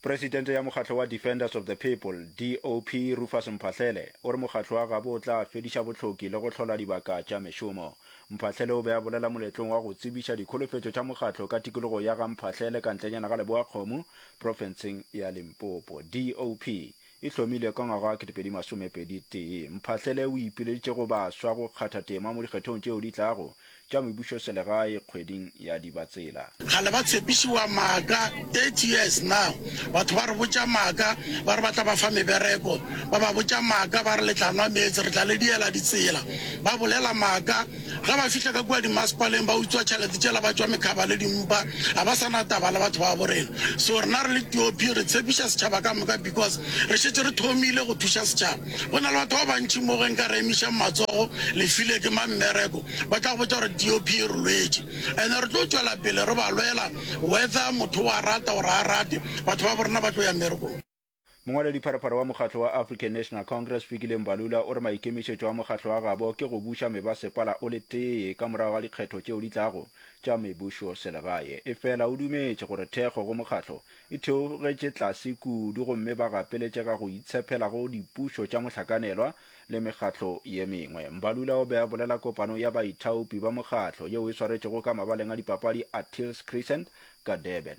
presidente ya mokgatlo wa defenders of the people dop rufus mphahlele o re mokgatlo wa gabo o tla fediša bohloki le go hlola dibaka tša mešomo mphahlele o be a bolela moletlong wa go tsebiša dikholofetšo tša mokgatlo ka tikologo ya ga mphahlele ka ntlenyana ga leboakgomo profenseng ya limpopo dop e hlomilwe ka ngwaga wa 2021, Mphahlele o ipileditše go baswa go kgatha tema mo dikgethong tšeo di tlago tša mebušoselegae kgweding ya Dibatsela. Kgale ba tshepišiwa maaka, 30 years now batho ba re botša maaka ba re ba tla ba fa mebereko, ba ba botša maaka ba re le tla nwa meetse, re tla le diela ditsela, ba bolela maaka. Ge ba fihla ka kua dimasepaleng, ba utswa tšhelete tšela ba tšwa mekhaba le dimpa. Ga ba sa na taba le batho ba gabo rena. So rena re le TOP re tshepiša setšhaba ka moka because re šetše re thomile go thuša setšhaba. Go na le batho ba bantši mo ge nka re emišang matsogo le file ke mang mmereko, ba tla go botša gore TOP e re lwetše. And re tlo tšwela pele re ba lwela whether motho o a rata or ga a rate, batho ba bo rena ba tlo ya mmerekong. Mongwaladipharapara wa mokgatlo wa African National Congress Fikile Mbalula o re maikemišetšo a mokgatlo wa gabo ke go buša mebasepala o le tee ka morago ga dikgetho tšeo di tlago tša mebušoselegae. Efela o dumetše gore thekgo go mokgatlo e theogetše tlase kudu gomme ba gapeletše ka go itshepela go dipušo tša mohlakanelwa le mekgatlo ye mengwe. Mbalula o be a bolela kopanong ya baithaopi ba mokgatlo yeo e swaretšwego ka mabaleng a dipapadi a Tills Crescent ka Durban.